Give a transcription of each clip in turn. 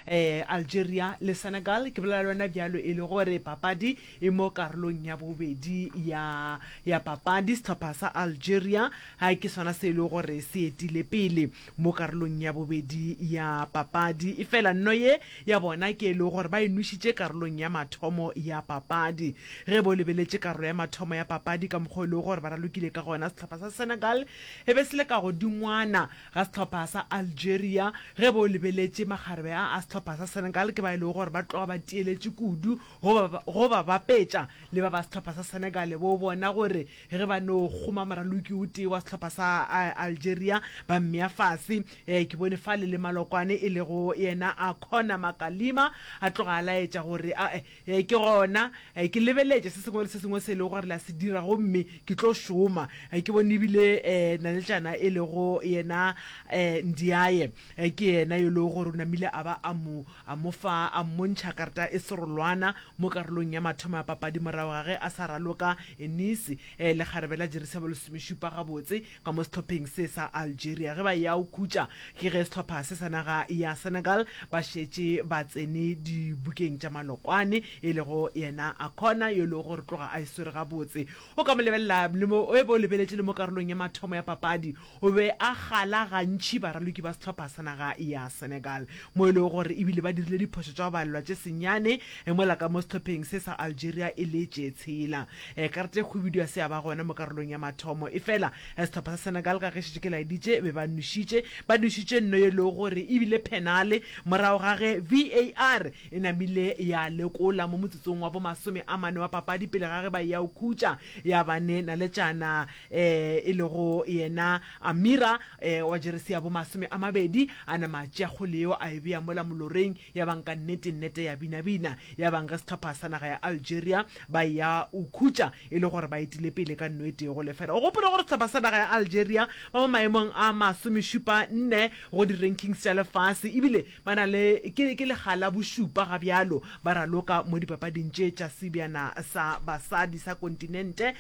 Algeria le Senegal, ke bolela le wena bjalo e le gore papadi e mo karolong ya bobedi ya ya papadi. Sehlopha sa Algeria ha ke sona se e le gore se etile pele mo karolong ya bobedi ya papadi, e fela nno ye ya bona ke e le gore ba e nwešitše karolong ya mathomo ya papadi. Ge bo lebeletše karolo ya mathomo ya papadi ka mokgwa o e le gore ba ralokile ka gona, sehlopha sa Senegal e be se le ka godingwana, ga sehlopha sa Algeria. Ge bo lebeletše, makgarebe a a sehlopha sa Senegal ke ba e lego gore ba tloga ba tiyeletše kudu go ba, go ba bapetša le ba ba sehlopha sa Senegal. Bo bona gore ge ba no kgoma moraloki o tee wa sehlopha sa Algeria, ba mmea fase. Ee, ke bone fale le malokwane e lego yena a Conor Makalima a tloga a laetša gore, Ae, Ee, ke gona. Ke lebeletša se sengwe le se sengwe se e lego gore le a se dira, gomme ke tlo šoma. Ke bone e bile naletšana e lego yena Ndiaye, ke yena yo e lego gore o namile a ba a mo, a mo fa, a mmontšha karta e serolwana mo karolong ya mathomo ya papadi morago ga ge a sa raloka Enisi lekgarebe la Jerisabo lesomešupa gabotse. ka mo sehlopheng se sa Algeria ge ba eya go khutša ke ge sehlopha se sa naga ya Senegal ba šetše ba tsene dibokeng tša Malokwane e lego yena Akona yo e lego gore tloga a e swere gabotse o ka mo lebelela le mo e bo lebeletše le mo karolong ya mathomo ya papadi o be a kgala gantši baraloki ba sehlopha sa naga ya Senegal mo e lego gore ebile ba dirile diphošo tša go balelwa tše senyane mola ka mo sehlopheng se sa Algeria e le tše tshela. Ekarte khubidu ya se ya ba gona mo karolong ya mathomo. Efela sehlopha sa Senegal ka ge šetše ke laeditše, be ba nwešitše. Ba nwešitše nno ye lego gore e bile phenale morago ga ge VAR e namile ya lekola mo motsotsong wa bo masome a mane wa papadi pele ga ge ba eya go khutša ya ba ne naletšana e lego yena Amira wa jeresi ya bo masome a mabedi a nama a tšea kgole yeo a e bea mola moloreng. Yabang ka nnete nnete ya binabina. Yabang ge sehlopha sa naga ya Algeria Ba eya o khutša e le gore ba etile pele ka nno e tee go lefela. O gopole gore sehlopha sa naga ya Algeria ba mo maemong a masomešupa nne go di-rankings tša lefase ebile ba na le ke ke lega la bošupa ga bjalo ba raloka mo dipapading tše tša sebjana sa basadi sa kontinente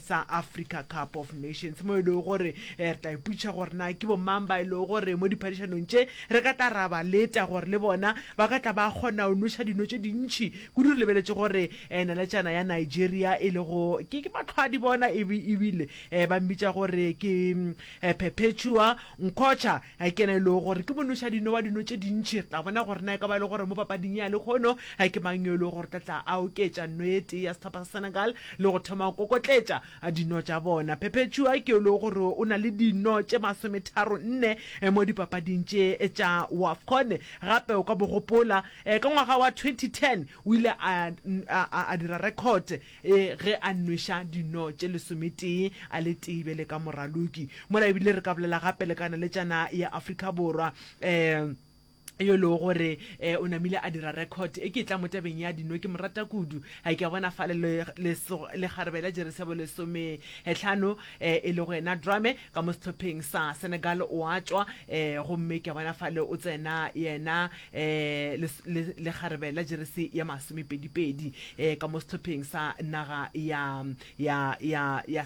sa Africa Cup of Nations mo e lego gore re tla ipotšiša gore na ke bomang ba e lego gore mo diphadišanong tše re ka tla ra ba leta gore le bona ba ka tla ba kgona go nweša dino tše dintši Kudu re lebeletše gore naletšana ya Nigeria e lego ke ke Matlhwadi bona e e bile ba mmitša gore ke Perpetua Nkocha ke yena e lego gore ke monoša dino wa dino tše dintši. Re tla bona gore na e ka ba e le gore mo papading ya lekgono ke mang yo e lego gore o tla tla a oketša no e tee ya sehlopha sa Senegal le go thoma go kokotletša a dino tša bona. Perpetua ke lo gore o na le dino tše masometharo nne mo dipapading tše tša Wafcon. Gape o ka bo gopola ka ngwaga wa 2010 o ile a a a dira record ge a nweša dino tše lesometee a le tee bjale ka moraloki. Mola ebile re ka bolela gape le ka naletšana ya Afrika Borwa. yo e lego gore um o namile a dira record e ke tla mo tabeng ya dino ke mo rata kudu ga ke a bona fa le lekgarebe la jeresebo lesometlhano um e lego yena drame ka mo sehlopheng sa senegal o a tšwa um gomme ke a bona fa le o tsena yena um lekgarebe la jeresi ya masomepedipedi um ka mo sehlopheng sa naga ya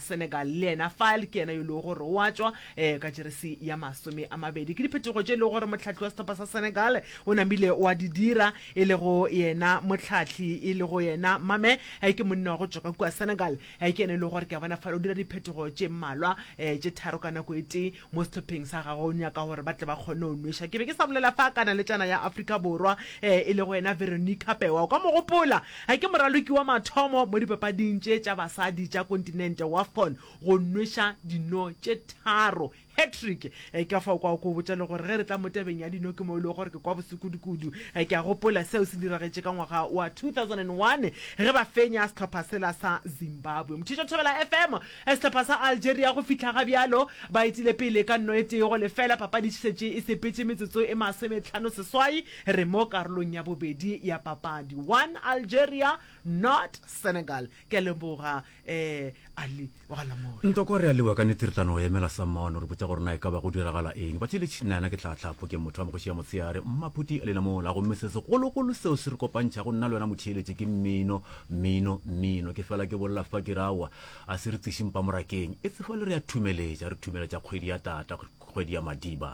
senegal le yena fa ke yena yo e lego gore o a tšwa Ee, ka jeresi ya masome a mabedi ke diphetogo tše e lego gore mohlahli wa sehlopha sa Senegal o namile wa di dira, e lego yena mohlahli e lego yena Mame eh, ke monna wa go tšwa ka kua Senegal. Eh, ke yena e lego gore ke a bona fale o dira diphetogo tše mmalwa, eh, tše tharo ka nako e tee mo sehlopheng sa gagwe, o nyaka gore ba tle ba kgone go nweša. Ke be ke sa bolela fa ka naletšana ya Afrika Borwa eh, e lego yena Veronica Pewa, o ka mo gopola eh, ke moraloki wa mathomo mo dipapading tše tša basadi tša kontinente, Wafcon. go nweša dino tše tharo, hat-trick. Ka fao kwa o ko botša le gore ge re tla mo tabeng ya dino ke mo e lego gore ke kwa bose kudu-kudu. Ke a gopola seo se diragetše ka ngwaga wa 2001 ge ba fenya sehlopha sela sa Zimbabwe. Mothiša Thobela FM, Sehlopha sa Algeria go fihla ga bjalo ba etile pele ka nno e tee go lefela, papadi e šetše e sepetše metsotso e masometlhano seswai, re mo karolong ya bobedi ya papadi. One Algeria, nought Senegal. Ke a leboga. ee ali wa galamoya ntoko re a lewa ka nete re tla no emela sa mono re botsa gore na e ka ba go diragala eng ba tshele tšhinana ke tlhatlhapho ke motho wa mogoši ya motsheyare mmaphuti a lenamola gomme se segologolo seo se re kopantšha go nna le wena motheeletše ke mmino mmino mmino ke fela ke bolela fa ke rawa a se re tsešing pamorakeng e tsefa le re ya thumeletša re thumeletša kgwedi ya tata kgwedi ya madiba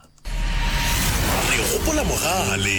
re gopola mogale